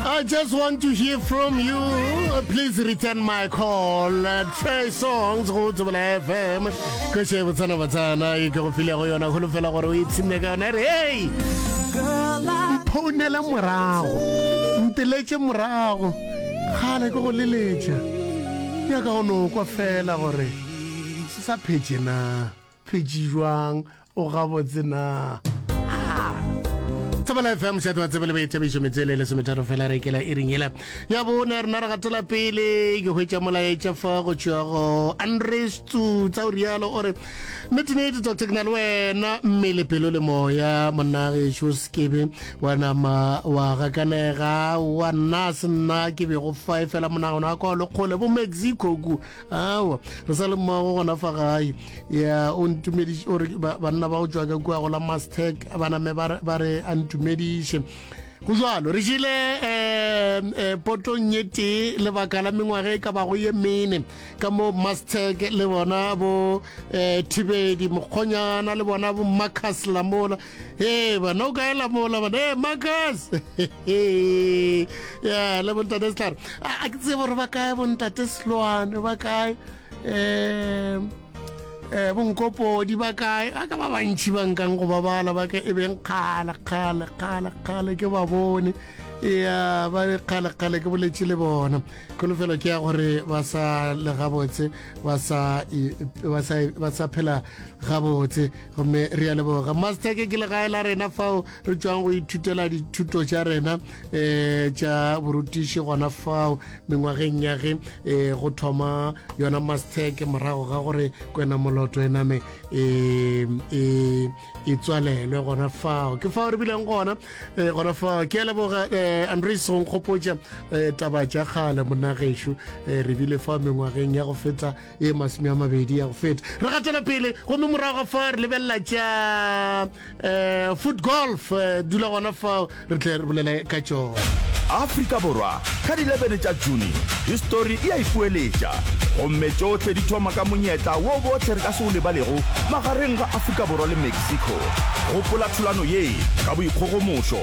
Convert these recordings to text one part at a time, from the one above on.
I just want to hear from you. Please return my call. Trey Songs go to Bela FM. Ke she botsana botsana e ke go file go yona go fela gore o itshine ka yona re hey. Phone la morago. Nteletse morago. Khale go go leletša. Ya ka go no kwa fela gore se sa phetse na. Phitši jwang o gabotse na? tsebela fm seato wa tsebele boithabišo metsele e lesometharo fela re kela iring ele ya bone rena re gatela pele ke hwetša molaetša fa go tšwago andres tsutsa o rialo o re netenete doctor ke na le wena mmele pelo le moya monnageso sekebe wa nama wa gakanega wa nna se nna ke bego fa e fela monagano wa kwa lekgole bo mexico ku awa re sa le mmogo gona fa gae ya o ntumediše o re banna ba go tswa ka kua go la mastec ba name ba re a ntumediše go jalo re jile um um potong ye tee lebaka la mengwaga e ka bago ye mene ka mo mastec le bona bo um thibedi mokgonyana le bona bo marcus lamola Ee, bana o kaela mola bana ee makas ya le bontate setlhare a ke tsebo gore ba kae bontate seloane ba kae um um bonkopodi ba kae a ka ba bantšhi ba nkang go babala ba ka e beng kgale kgale kgale kgale ke ba bone ya ba be kgale kgale ke boletše le bona kholofelo ke ya gore ba sa le gabotse ba sa phela gabotse gomme re a leboga masteke ke legae la rena fao re tswang go ithutela dithuto tša rena um tša borutiši gona fao mengwageng ya ge um go thoma yona masteke morago ga gore kwena moloto e name um e tswalelwe gona fao ke fao re bileng gona um gona fao ke a leboga um andre song kgopotša um taba tša kgale monagešo um re bile fao mengwageng ya go feta e masome a mabedi ya go feta re gatela pele gomme morago ga fa re lebelela tša um foot golf eh, dula gona fao re tle re bolela ka tšona afrika borwa ka di 11 tša june histori e a ipoeletša gomme tšohle di thoma ka monyetla wo botlhe re ka se o lebalego magareng ga afrika borwa le mexico gopola thulano ye ka boikgogomošo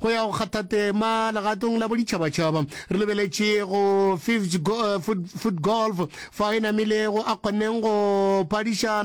Go ya go kgatha tema legatong la boditšhabatšhaba, re lebeletše go Fifth Foot Golf, fa a e namilego a kgonneng go phadišana